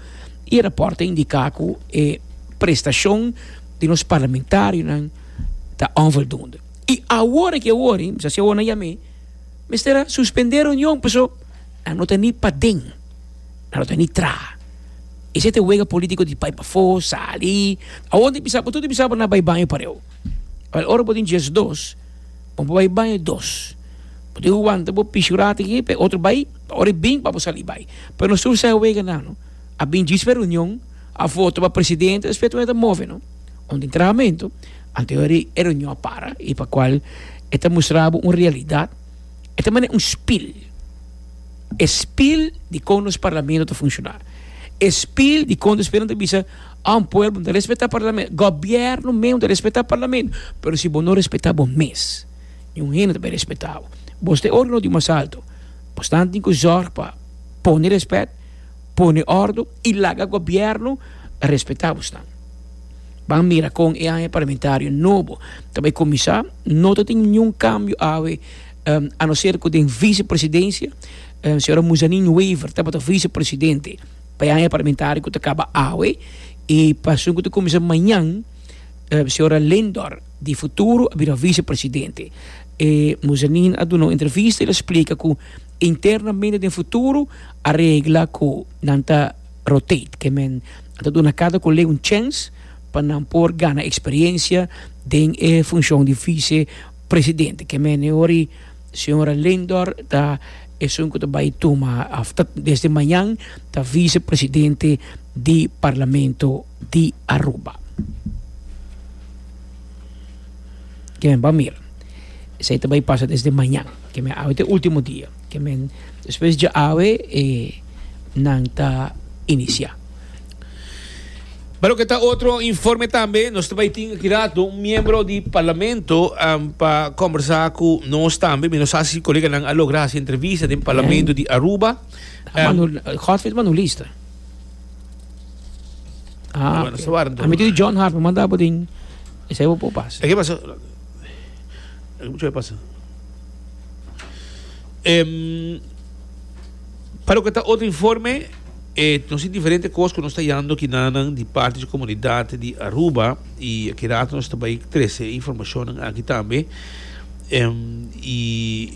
i e rapòrt ta indiká ku e prestashon di nos parlamentarionan ta onvoldunde. I awor aki awor, i mester si awor nan yam'é, mester a suspendé reunion paso nan no ta ni paden, nan no ta ni traha. Esei ta e wega polítiko di bai pafó, sali. Awor nan ta bisa, bo tur ta bisa bo na bai baño pareu. Ora bo tin diesdos. Bo por bai baño dos bo tin ku wanta bo pishu rat aki pa e otro bai pa ora e bin pa bo sali bai pero nos tur seis wega nan no a bin djis pa e reunion a voto pa presidente despues tur nan ta move no un entrahamento anto yori e reunion a para y pa cual e ta mustra bo un realidad e ta mane un spil e spil di kon nos parlamento ta funciona e spil di kon ta spera nan ta bisa Un pueblo no ta respeta parlamento, gobierno menos ta respeta parlamento, pero si bo no respeta bo mes, niun hende no ta bay respeta bo. Bo sta e organo di mas alto, bo stan tin cu zorg pa pone respet, pone ordo y laga gobierno respeta bo stan. Ban mira con e aña parlamentario nobo ta bay cuminsa, no ta tin niun cambio awe a no ser cu den vicepresidencia señora Muzanin Wever tabata vicepresidente. Payanan e parlamentario cu ta caba awe y pasobra cu ta cuminsa mañan, Sra. Lindor di Futuro a bira vicepresidente. E Muzanin a duna un entrevista y el a splica cu internamente den Futuro a regla cu nan ta rotate, ke men a ta duna cada colega un chens pa nan por gana experiencia den e funcion di vicepresidente. Ke men e ora y. Señora Lindor ta esun cu ta bay tuma of ta desde mañan ta vicepresidente di Parlamento di Aruba. Ke men ba mira. Esey ta bay pasa desde mañan. Ke men awe ta e ultimo dia. Ke men despues dje awe e nan ta inicia. Pa loke ta otro informe tambe, nos ta bai tin aki rato un miembro di parlamento um, pa conversa cu nos tambe. Mi no sa si coleganan a logra haci entrevista den parlamento di Aruba. Um, Manu, Godfrey Manulista. Ah, Bueno, sa warm a mi di John Hart, me manda bodin. Ese bo pas. ¿Qué pasa? ¿Qué pasa? Em, Pa loke ta otro informe e nos tin diferente cos cu nos ta yando kinanan di partes di comunidad di Aruba y aki rato nos ta bay trece informacionnan aki tambe y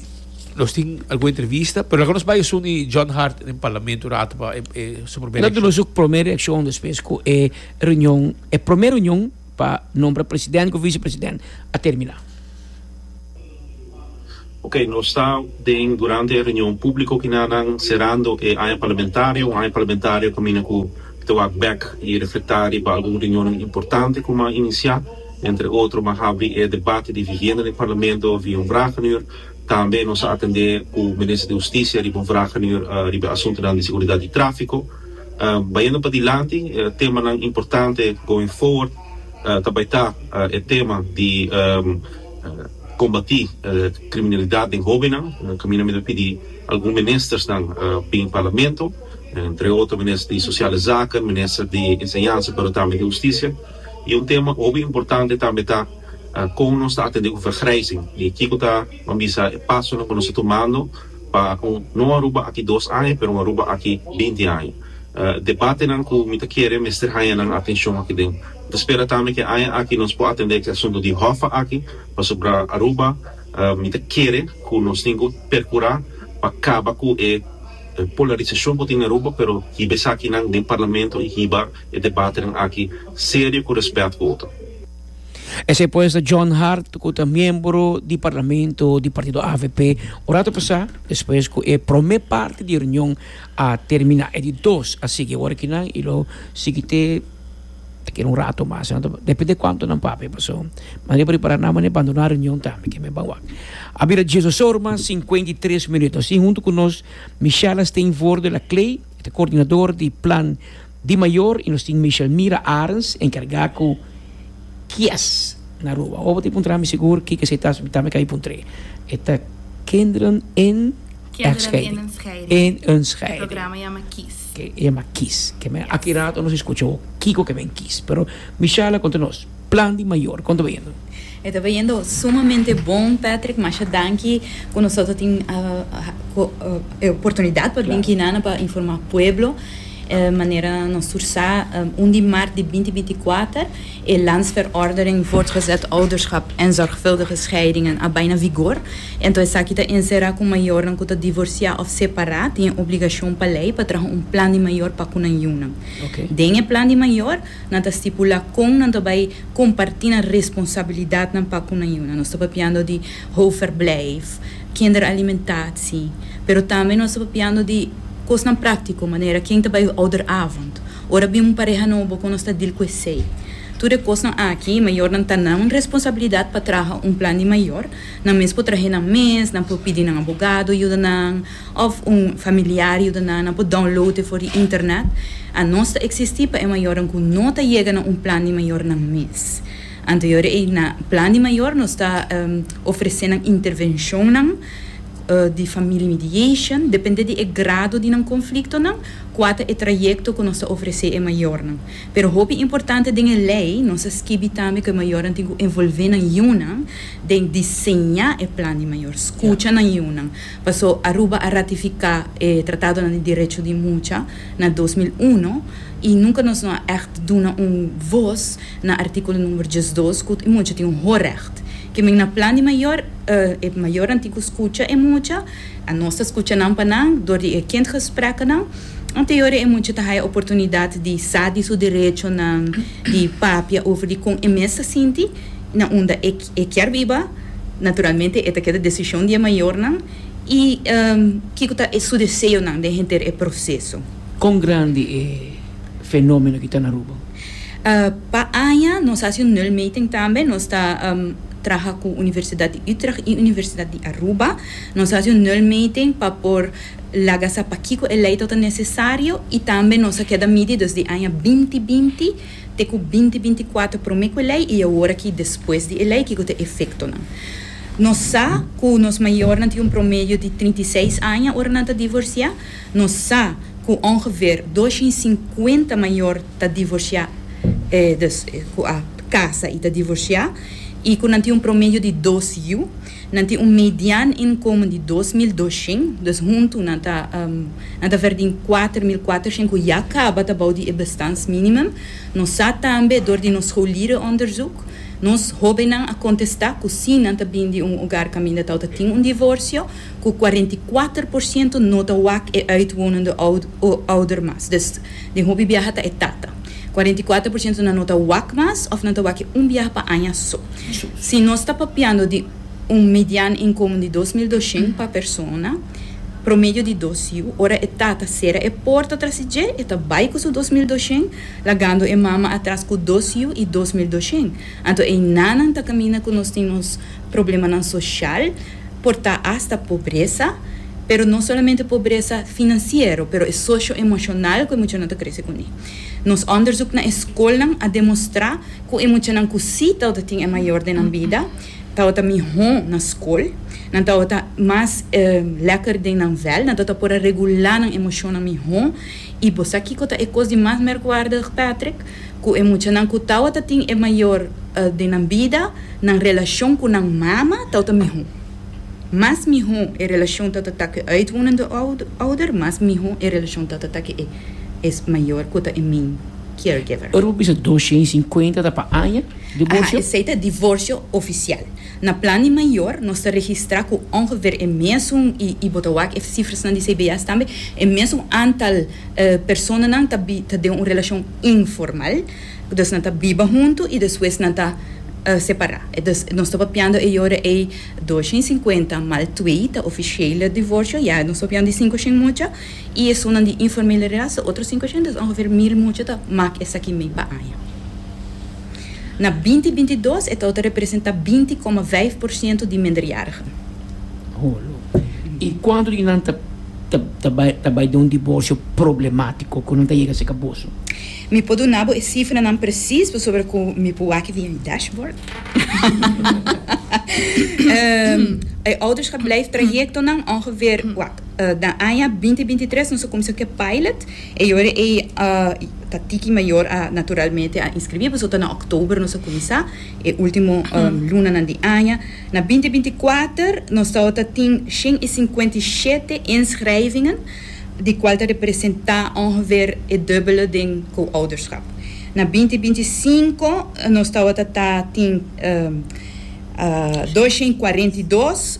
nos tin algun entrevista pero laga nos bay esun di John Hart den Parlamento un rato pa e su primer reaccion. Lo duna su primer reaccion despues cu e reunion e primer reunion. pa nombra president ku vicepresident a termina. Ok, nos ta den durante e reunion publico ki na nan cerando e aña parlamentario, un aña parlamentario caminda cu ta wak bek y reflecta riba algun reunionnan importante cu m'a inicia, entre otro m'a habri e debate di vivienda den parlamento via un vragenur, tambe nos a atende cu Minister di Husticia riba un vragenur riba e asuntonan di seguridad y trafico. Bayendo pa dilanti, temanan importante going forward ta bay ta e tema di combati criminalidad den hobennan, caminda mi ta pidi algun ministersnan bin Parlamento, entre otro minister di Sociale Zaken, minister di Enseñansa pero tambe di Husticia, y un tema hopi importante tambe ta con nos ta atende cu vergrijzing y kico ta, bo a bisa, e pasonan cu nos ta tumando. Pa con no Aruba aki dos aña pero Aruba aki binti aña. Debatenan cu mi ta kere mester haña nan atencion aki den. Mi ta spera tambe cu e aña aki nos por atende e asunto di Hoffa aki pasobra Aruba mi ta kere cu nos tin cu percura pa caba cu e polarisacion cu tin na Aruba pero hiba esakinan den Parlamento y hiba e debatenan aki serio cu respet cu otro. Esei pues ta John Hart ku ta miembro di parlamento di partido avp un rato pasá despues ku e promé parti di reunion a terminá e di dos a sigui awor aki nan i lo sigui te ta keda un rato mas nan ta depende di kuantu nan papia paso mane por ripará nan mane bandoná reunion tambe ke men ban wak a bira Jesus Soerma sinkuenta i tres minuto si huntu ku nos Michella Steenvoorde Laclay ta kordinador di plan Di mayor y nos tin Michelmira Arens encarga cu kies na Aruba. Awor bo ta puntra mi segur kiko esei ta, ta mi ka puntre. E ta Kinderen in Eindscheiding. E programa yama Kies. Yama Kies. Aki rato nos escucha bo kiko ke men kies. Pero Michelle a conta nos. Plan di mayor kon ta bayendo? E ta bayendo sumamente bon Patrick, masha danki ku nosoto tin e oportunidad pa bin Quinana pa informa pueblo manera nos tur sa un di mart di binti binti kuater e landsverordening voortgezet ouderschap en zorgvuldige scheidingen a bai na vigor enton esaki ta ensera ku mayornan ku ta divorcia of separa tin e obligashon pa lei pa traha un plan di mayor pa ku nan yunan den e plan di mayor Nan ta stipulá kon nan ta bai kompartí nan responsabilidatnan pa ku nan yuna. Nos ta papiando di hoofdverblijf, kinderalimentatie, pero tambe nos ta papiando di kosnan práktiko manera ken ta bai ouderavond, ora bin un pareha nobo kon nos ta dil ku esei. Tur e kosnan aki, mayornan ta nan responsabilidat pa traha un plan di mayor. Nan mes por trahe nan mes, nan por pidi nan abogado yuda nan. Of un familiar yuda nan nan por download e for di internet. Anos ta existi pa e mayornan cu no ta yega na un plan di mayor nan mes. Anterior ey na plan di mayor nos ta ofrece nan intervencionnan di family mediation depende di e grado di nan conflictonan cua ta e trayecto cu nos ta ofrece e mayornan. Pero hopi importante den e ley nos a skibi tambe cu e mayornan tin cu envolve nan yiunan den diseña e plan di mayor, scucha nan yiunan. Paso Aruba a ratifica e tratadonan di derecho di mucha na dos mil uno y nunca nos no a echt duna un voz na articulo number diesdos cu e mucha tin un horecht. Kimen na plan di mayor e mayornan tin cu scucha e mucha, a nos ta scucha nan pa nan door di e kindgesprekkenan. Anteorie e mucha ta haya oportunidad di sa di su derechonan, di papia over di con e mes ta sinti na unda e. E kier biba, naturalmente e ta keda decision di e mayornan y kico ta su deseonan den henter e proceso. Con grandi e fenomeno ki ta na Aruba? Pa aña nos haci un nulmeting tambe, nos ta traha cu Universidad di Utrecht y Universidad di Aruba, nos haci un nulmeting pa por laga sa pakico e ley ta ta necesario y tambe nos a keda midi desde aña binti binti, Te ku binti binti kuater promé ku e lei i awor aki despues di e lei kiko ta e efektonan. Nos sa ku nos mayornan tin un promedio di trinta i seis aña ora nan ta divorsiá. Nos sa ku ongever dos shin sinkuenta mayor ta divorsiá, eh, dus ku a kasa i ta divorsiá i ku nan tin un promedio di dos yu. Nan tin un median inkomen di dos mil doshen, dus huntu nan ta nan ta verdin kuater mil kuatershen ku ya kaba ta bou di e bestans minimum. Nos sa tambe dor di nos scholieren onderzoek, nos hobennan a kontesta ku si nan ta bin di un ogar kaminda tau ta tin un divorsio, ku kuarenta i kuater por siento no ta wak e uitwonende ouder mas. Dus den hopi biaha ta e tata. Kuarenta i kuater por siento nan no ta wak mas òf nan ta wak e un biaha pa aña so. Si nos ta papiando di un median inkomen di dos mil doshent pa persona, promedio di dos yu, ora e tata sera e porta tras di dje, e ta bai ku su dos mil doshent, lagando e mama atras ku dos yu i dos mil doshent. Anto einanan ta kaminda ku nos tin nos problemanan soshal, por ta asta pobresa, pero no solamente pobresa finansiero, pero e sosho-emoshonal ku e muchanan ta krese kuné. Nos òndersuk na e skolnan a demostrá. Ku e muchanan ku si tabata tin e mayor den nan bida, tabata mihó na skol, nan tabata mas lèker den nan vèl, nan tabata por a regulá nan emoshonnan mihó. I bo sa kiko ta e kos di mas merkwaardig, Patrick? Ku e muchanan ku tabata tin e mayor den nan bida, nan relashon ku nan mama tabata mihó. Mas mihó e relashon tatatá ku e uitwonende ouder, mas mihó e relashon tatatá ku e mayor, ku ta e min. caregiver. Ora bo bisa dos shen i sinkuenta ta pa aña divorsio? Aha, esei ta divorsio ofisial. Na Plan di Mayor nos ta registrá ku ongever e mesun, i bo ta wak e sifrasnan di CBS tambe, e mesun antal personanan ta ta den un relashon informal. Dus nan ta biba huntu i despues nan ta separá. Dus nos ta papiando e yora ei dos shen i sinkuenta mal twe ta ofishele divorsio, ya nos ta papiando di sinku shen mucha. I esunnan di informalidad sa otro sinku ochenta, ongeveer mil mucha ta mak esaki mei pa aña. Na binti binti dos e tau ta representa binti koma vijf por siento di minderjarigen. I kuantu di nan ta bai den un diborsio problematiko ku nan ta yega seka boso? Mi por duna bo e sifranan presis pasobra ku mi por wak via e dashboard. E ouderschap blijf trajectonan ongeveer, Den aña binti binti tres nos a kuminsá ku e pilot. E yora ei ta tiki mayor a naturalmente a inskribí, pasobra ta na òktober nos a kuminsá, e último lunanan di aña. Na binti binti kuater nos tabata tin shen i sinkuenta i shete inschrijvingen, di kual ta representá òngeveer e dùbbele den co-ouderschap. Na binti binti sinku nos tabata ta tin dos shen i kuarenta i dos.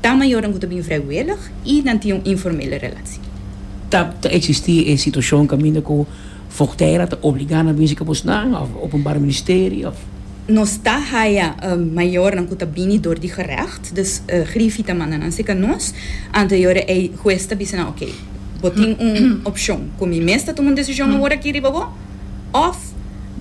Ta mayornan ku ta bin vrijwillig i nan tin un informele relatsi. Ta eksistí e situashon kaminda ku Frontera ta obligá nan binse kabusnan òf Openbare Ministerie òf? Nos ta haya mayornan ku ta bini dor di gerècht, dus Griffie ta manda nan seka nos. Ante yore ei hues ta bisa nan, Oké, bo tin un opshon, ku mi mes ta tuma un desishon aworakí riba bo. Òf,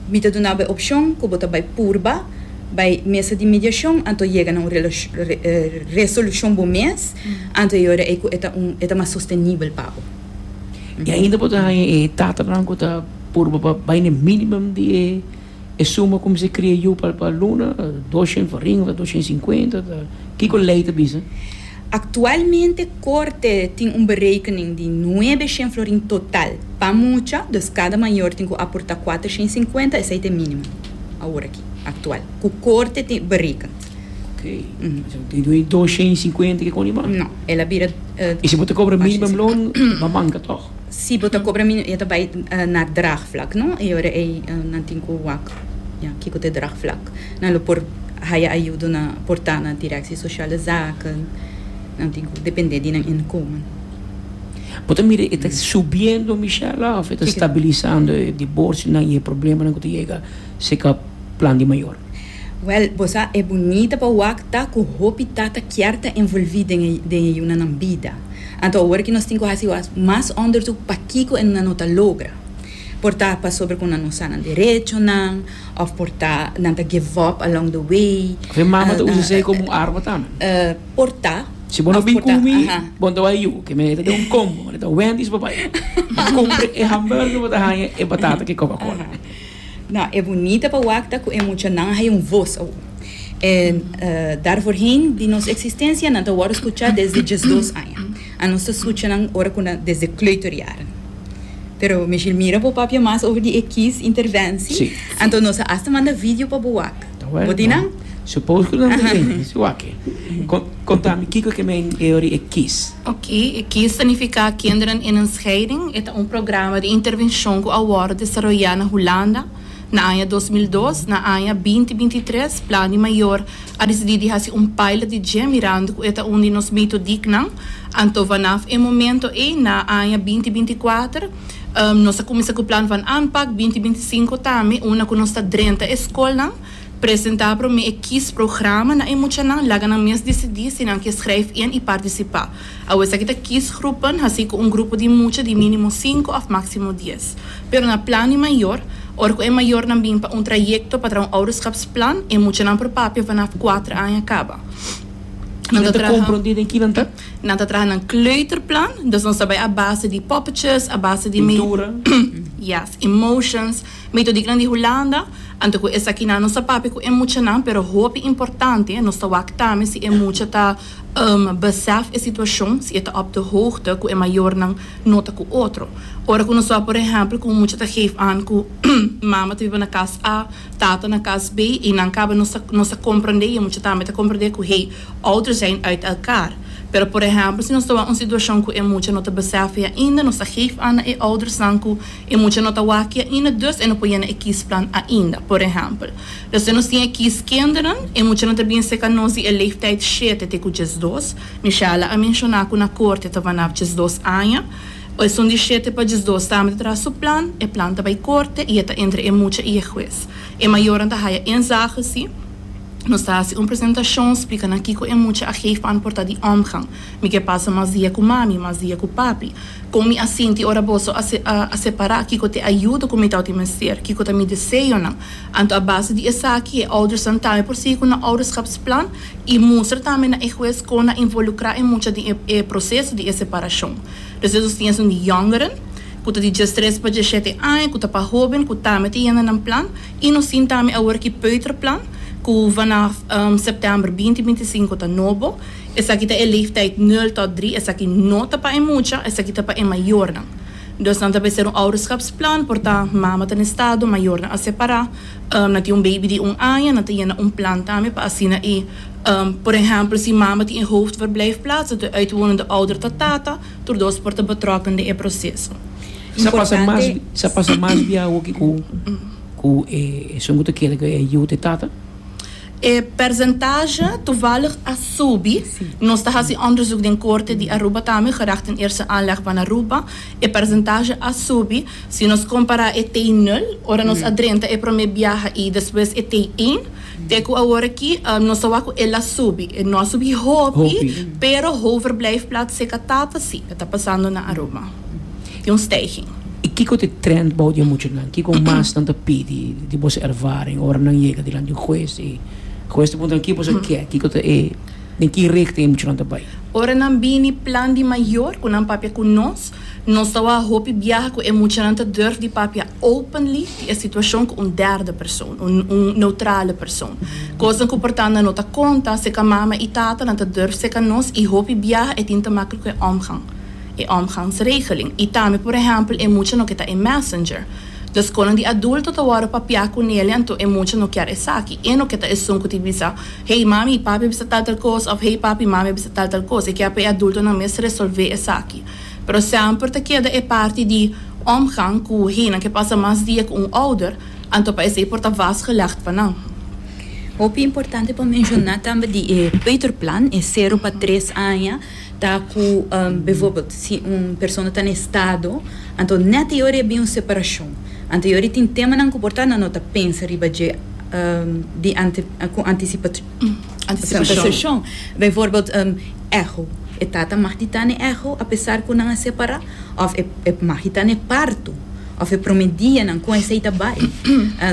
mi ta duna bo e opshon ku bo ta bai purba bai mesa di mediashon anto yega na un resolushon bo mes, anto e ora ei ku e ta un e ta mas sostenibel pa bo. I ainda bo ta haña e tatanan ku ta purba pa bai na e minimum di e suma ku mester kria yu pa luna, dos shens farinha, dos shens sinkuenta, ta kiko lei ta bisa? Aktualmente Korte tin un berekening di nuebe shen florin total pa mucha, dus kada mayor tin ku aportá kuater shen i sinkuenta, esei ta e mínimo awor aki, aktual, ku Korte tin bereken. Ok, esei tin duen dos shen i sinkuenta i kiko riba? No, el a bira. I si bo ta kobra minimum loan, bo ta bamanka tòg? Si bo ta cobra mi e ta bay na draagvlak no y ora ey nan tin cu wak ya kico ta e draagvlak. Nan lo por haya ayudo na porta na directie sociale zaken. Nan tin cu depende di nan inkomen. Bo ta mira e ta subiendo Michella of e ta stabilisando e divorcionan y e problemanan cu ta yega si ca plan di mayor? Wel, bo sa e bunita pa wak ta cu hopi tata kier ta envolvi den e yunanan bida. Anto awor ki nos tin ku hasi was mas onderzoek pakiko e nan no ta logra. Por ta pasobra ku nan no sa nan derechonan òf por ta nan ta give up along the way. Òf e mama ta usa esei komo un arma tambe. Por ta. Si bo no bin ku mi, bo no ta bai yu. Ke mene ta den un combo, mane ta Wendy's bo bai. Bo kumpra e hamburger bo ta haña e batata ke Coca-Cola. No, e bunita pa wak ta cu e muchanan hay un voz awo. E dar voorheen di nos existencia nan ta worde scucha desde diesdos aña. A nos ta scucha nan ora cu nan desde kleuterjaren. Pero Michiel mira bo papia mas over di e kies interventie, anto nos a hasta manda video pa bo wak. Bo tin nan? Suppose cu nan tin. Su wak-e. Conta mi kico ke men e ori e kiss. Ok, e kiss ta nifica Kinderen in een scheiding. E ta un programa di intervencion cu a worde desaroya na Hulanda na aña dos mil dos. Na aña binti binti tres Plan di Mayor a decidi di haci un pilot di dje mirando cu e ta un di nos mito dicnan. Anto vanaf e momento ey na aña binti binti kuater. Nos a kuminsá ku plan van aanpak binti binti sinku tambe unda ku nos ta drenta e skolnan, presentá promé e kis programa na e muchanan, laga nan mes disidí si nan ke skrijf in i partisipá. Awe esaki ta kis grupen, hasi ku un grupo di mucha di mínimo sinku òf máksimo dies. Pero na plan di mayor, ora ku e mayornan bin pa un trayekto pa traha un ouderskapsplan, e muchanan por papia vanaf kuater aña kaba. Nan ta traha. Nan ta traha nan kleuterplan, dus nos ta bai a base di poppetjes, a base di mi. Pintura. Yes, emotions. Mi to diknan di Hulanda, anto ku esaki nan nos ta papia ku e muchanan, pero hopi importante nos ta wak tambe si e mucha ta besèf e situashon, si e ta op de hoogte ku e mayornan no ta ku otro. Ora ku nos ta wak por ehèmpel ku un mucha ta geef aan ku mama ta biba na kas A, tata na kas B, i nan kaba nos ta nos ta komprondé i e mucha tambe ta komprondé ku hey, Otro zijn uit elkaar. Pero por ehempel si nos ta wak un situashon ku e mucha no ta besèf e ainda, nos ta geef an na e oudersnan ku e mucha no ta wak e ainda, dus e no por yena e kiesplan ainda. Por ehempel, despues nos tin e kies kinderen, e mucha no ta bini seka nos di e leeftijd shete te ku diesdos, Michelle a menshoná ku na korte ta vanaf diesdos aña. Esun di shete pa diesdos tambe ta traha su plan, e plan ta bai korte i e ta entre e mucha i e hues. E mayornan ta haya én zage, si. Nos ta hasi un presentashon splika nan kiko e mucha a geef pa an por ta di òmgang. Mi ke pasa mas dia ku mami, mas dia ku papi. Kon mi a sinti ora boso a a separá? Kiko ta e ayudo ku mi tawti mester? Kiko ta mi deseonan? Anto a base di esaki e oudersnan tambe por sigui ku nan ouderskapsplan i mustra tambe na e hues kon nan involukrá e mucha den e e proseso di e separashon. Despues nos tin esun di yòngeren ku ta di djestris pa djeshete aña ku ta pa hóben ku tambe ta yenda nan plan. I nos tin tambe awor ki peuterplan ku vanaf sèptèmber binti binti i sinku ta nobo. Esaki ta e leeftijd nul tòt drie. Esaki no ta pa e mucha, esaki ta pa e mayornan. Dus nan ta bes ser un ouderskapsplan por ta mama ta na estado, mayornan a separá. Nan tin un beibi di un aña, nan ta yena un plan tambe pa asina e. Por ehèmpel si mama tin e hoofdverblijfplaats, dan ta e uitwonende ouder ta tata. Tur dos por ta betrokken den e proseso. Importante. Sa pasa mas bia awoki ku e esun ku ta keda ku e yu ta e tata? E persentaje toevallig a subi. Nos ta hasi onderzoek den Korte di Aruba tambe, gericht in Eerste Aanleg van Aruba. E persentaje a subi. Si nos kompará e T nul, ora nos a drenta e promé biaha i despues e T één, Te ku aworaky nos ta wak ku el a subi. No a subi hopi, pero hoverblijfplaats e ka tap asi. E ta pasando na Aruba. E un stijging. I kiko ta e trend bou di e muchanan? Kiko mas nan ta pidi di boso ervaring ora nan yega dilanti un hues i hues ta puntra nan ke boso ke? Kiko ta e, den ki richting e muchanan ta bai? Ora nan bini plan di mayor ku nan papia ku nos. Nos ta wak hopi biaha ku e muchanan ta durf di papia openly di e situashon ku un derde persoon, un un neutrale persoon. Kosnan ku portanda no ta konta, seka mama i tatanan ta durf seka nos i hopi biaha e tin ta make ku e omgang, e omgangsregeling. I tambe por ehèmpel e mucha no ke ta e messenger. Dus konan di adulto ta wòrdu papia ku Nelia anto e mucha no kier esaki. E no ke ta esun ku tin bisa, Hey mami, papi a bisa tal tal kos òf Hey papi, mami a bisa tal tal kos. E kier pa e adultonan mes resolvé esaki. Pero semper ta keda e parti di omgang ku heynan ke pasa mas dia ku un ouder, anto pa esei por ta vastgelegd pa nan. Hopi importante pa menshoná tambe di e peuterplan, e sero pa tres aña, ta ku bivoorbeeld si un persona ta na estado, anto nèt e ora e bin un separashon, anto e ora tin temanan ku por ta nan no ta pensa riba dje di ku antisipacion. Antisipashon, Bijvoorbeeld un echo, e tata mag di tane echo apesar cu nan a separa, of e mag di tane parto, of e prome dia nan con esey ta bay.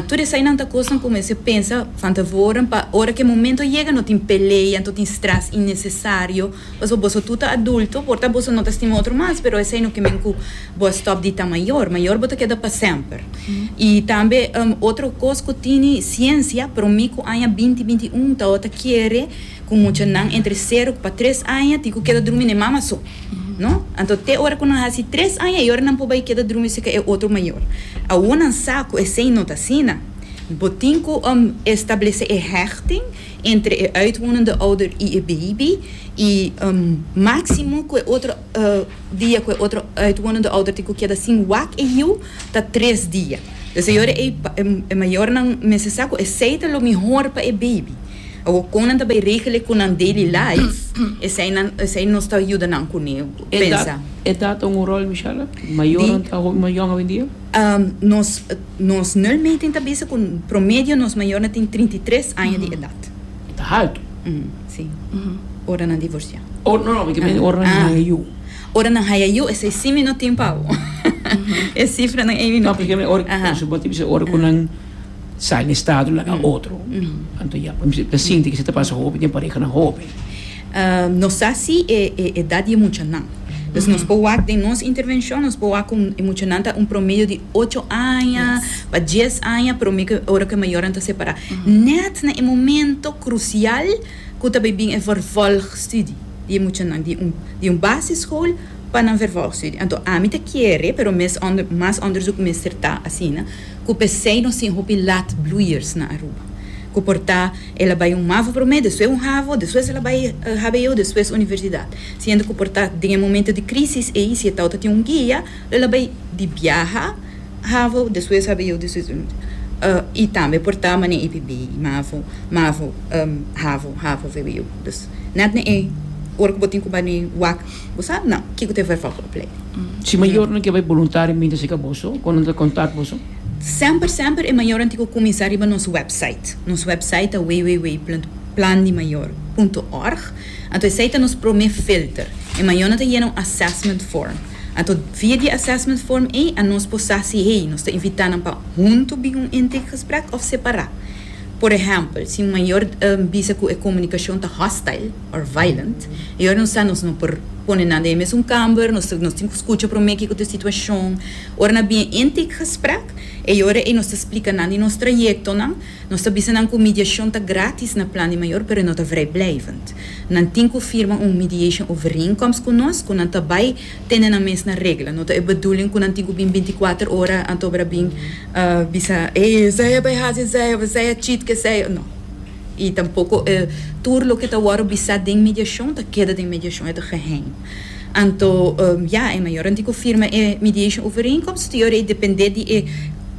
Tur eseynan ta cosnan cu mester pensa van tevoren pa ora cu e momento yega no tin pelea, no tin stress innecesario, pasobra boso tur ta adulto, por ta boso no ta stima otro mas, pero esey no kimen cu. Bo a stop di ta mayor, mayor bo ta keda pa semper. Y tambe otro cos cu tini ciencia, prome cu aña binti binti un taota kere cu muchanan entre cero cu pa tres aña tin cu keda drumi n'e mama so, no? Anto te ora cu nan haci tres aña e ora nan por bay keda drumi si ca e otro mayor. Awo nan sa cu esey no ta asina. Bo tin cu establece e hechting entre e uitwonende ouder y e baby y maximo cu e otro dia ku e otro uitwonende ouder tin ku keda sin wak e yiu ta tres dia. E señora ei pa e mayornan mester sa ku esei ta lo mihor pa e beibi. Awor kon nan ta bai regele ku nan daily life, esei nos ta yuda nan kune pensa. E tat un rol Michelle? Mayornan ta hopi yòn awendia? Nos nos nul meting ta bisa ku promedio nos mayornan tin trinta i tres aña di edat. Ta haltu. Sí, ora nan divorciá. Oh, no, no, mi ta mindi ora nan haya yu. Ah, ora nan haya yu, esei sí mi no tin pa awo. E cifranan ei mi no tin. No, porque mi ora, por ejemplo, bo ta bisa ora cu nan sai na estado laga otro, anto ya, mi ta sinti esei ta pasa hopi den parehanan hopi. Ah, nos sa si e edad di e muchanan. Entonces nos por wak den nos intervencion, nos por wak cu e muchanan ta un promedio di ocho aña pa dies aña prome cu ora cu e mayornan ta separa. Net na e momento crucial cu ta bay bin e vervolgstudie di e muchanan, di un, di un basisschool pa nan vervolgstudie. Anto ami ta kere, pero mes onder, mas onderzoek mester ta asina, cu pesey nos tin hopi laat bloeiers na Aruba cu por ta. El a bai un mavo promé, despues un havo, despues el a bai hbo, despues universidat. Siendo cu por ta den e momento di crisis ey, si e tau ta tin un guia, lo el a bai di biaha, havo, despues hbo, despues universidat. Y tambe por ta mane ey p'e bay mavo, mavo, havo, havo, hbo. Dus net na e ora cu bo tin cu bai na e wak, bo sa nan kico ta e vervolg opleiding. Si mayornan ke bai boluntario, mi ta seka boso? Con nan ta contact boso? Semper semper e mayornan tin ku kuminsá riba nos wèpsait. Nos wèpsait ta www.plandimayor.org, anto esei ta nos promé filter. E mayornan ta yena un assessment form. Anto via di e assessment form ei anos por sa si hey nos ta invitá nan pa huntu bin un intake gesprek òf separá. Por ehèmpel, si un mayor bisa ku e komunikashon ta hostile òf violent, e ora nos sa nos no por pone nan den e mesun kamber, nos tin ku skucha promé kiko ta e situashon, Ora na bien intake gesprek, e yora ei nos ta splika nan di nos trayectonan. Nos ta bisa nan cu mediacion ta gratis na Plan di Mayor, pero e no ta vrijblijvend. Nan tin cu firma un mediation overeenkomst cu nos cu nan ta bay tene nan mes na regla. No ta e bedoeling cu nan tin cu bin binti kuater ora anto bra bin bisa, Ey, esey a bay haci esey of esey a cheat cu esey. No. I tampoko e tur loke ta wòrdu bisá den mediashon ta keda den mediashon, e ta geheim. Anto, ya, e mayornan tin ku firma e mediation overeenkomst, tu yorei dependé di e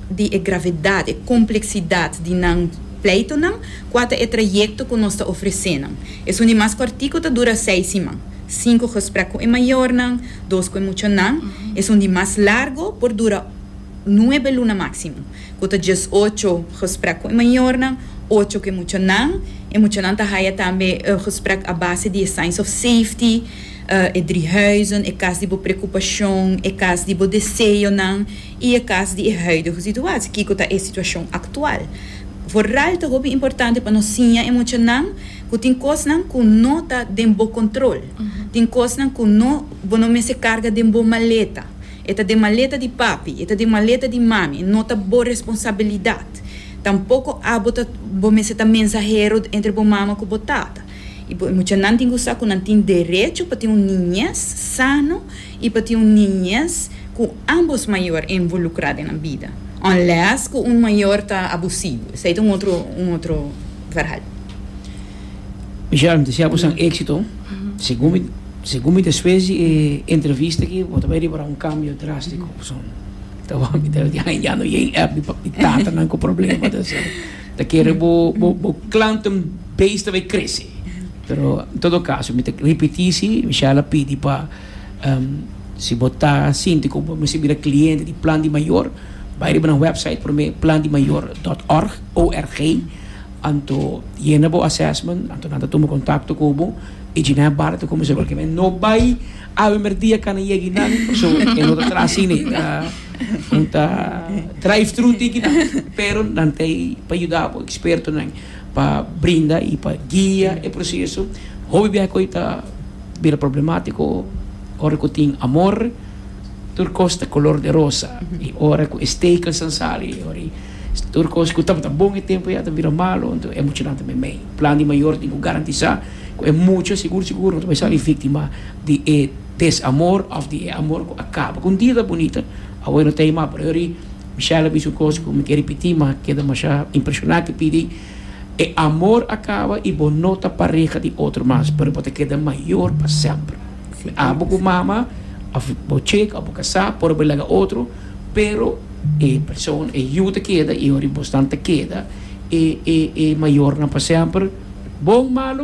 di e gravedat, e kompleksidat di nan pleitonan, kua ta e trayekto ku nos ta ofresé nan. Esun di mas kòrtiku ta dura seis siman, sinku gesprèk ku e mayornan, dos ku e muchanan. Esun di mas largu por dura nuebe luna máksimo. ku ta djes ocho gesprek ku e mayornan, ocho ku e muchanan. E muchanan ta haya tambe e gesprek a base di e signs of safety, e drie huizen, e kas di bo preokupashon, e kas di bo deseonan i e kas di e huidige situatie, kiko ta e situashon aktual. Vooral ta hopi importante pa nos siña e muchanan ku tin kosnan ku no ta den bo kontrol, tin kosnan ku no bo no mester karga den bo maleta. E ta den maleta di papi, e ta den maleta di mami, e no ta bo responsabilidat. Tampoko abo ta, bo mester ta mensahero entre bo mama ku bo tata. I bo e muchanan tin ku sa ku nan tin derecho pa tin un niñez sano i pa tin un niñez ku ambos mayor envolukrá den nan bida, unless ku un mayor ta abusivo, esei ta un otro, un otro verhal. Michelle, mi ta sea bo san exito. Segun mi segun mi despues di e entrevista aki bo ta bay riba un cambio drastico pasobra mi ta wak mi ta ya no yen app di di tatanan cu problema ta hacer. Ta kere bo bo bo klanten base ta bay crece. Pero en todo caso mi ta repeti si Michelle a pidi pa si bo ta sinti cu bo misti bira cliente di plan di mayor bay riba nan website prome plan di mayor dot org O R G. Anto yena bo assessment, anto nan ta tuma contacto cu bo y djina e barda ta cuminsa cualkier manera. No bay a primer dia cana yega y nan, so e no ta traha asi ne, nan ta drive through tiki nan, pero nan ta ahi pa yuda bo, expertonan pa brinda y pa guia e proceso. Hopi biaha cu ayi ta bira problematico, ora cu tin amor tur cos ta color de rosa y ora cu e stekelsnan sali, ora e. Tur kos ku tabata bon e tempu ya ta bira malu, anto e muchanan ta meimei. Plan di mayor tin ku garantisá ku e mucha sigur sigur no ta bai sali víktima di e desamor òf di e amor ku a kaba. Ku un dia ta bunita, awor e no ta ei mas. Pasobra Michelle a bisa un kos ku mi ke ripití, ma a keda masha impreshoná ku e pidi, E amor a kaba i bo no ta pareha di otro mas, pero bo ta keda mayor pa semper. Mi abo ku mama, òf bo chek, òf bo kasá, por bo laga otro. Pero e persona, e yu ta keda, i ora i bosnan ta keda, e, e, e mayornan pa semper. Bon, malu?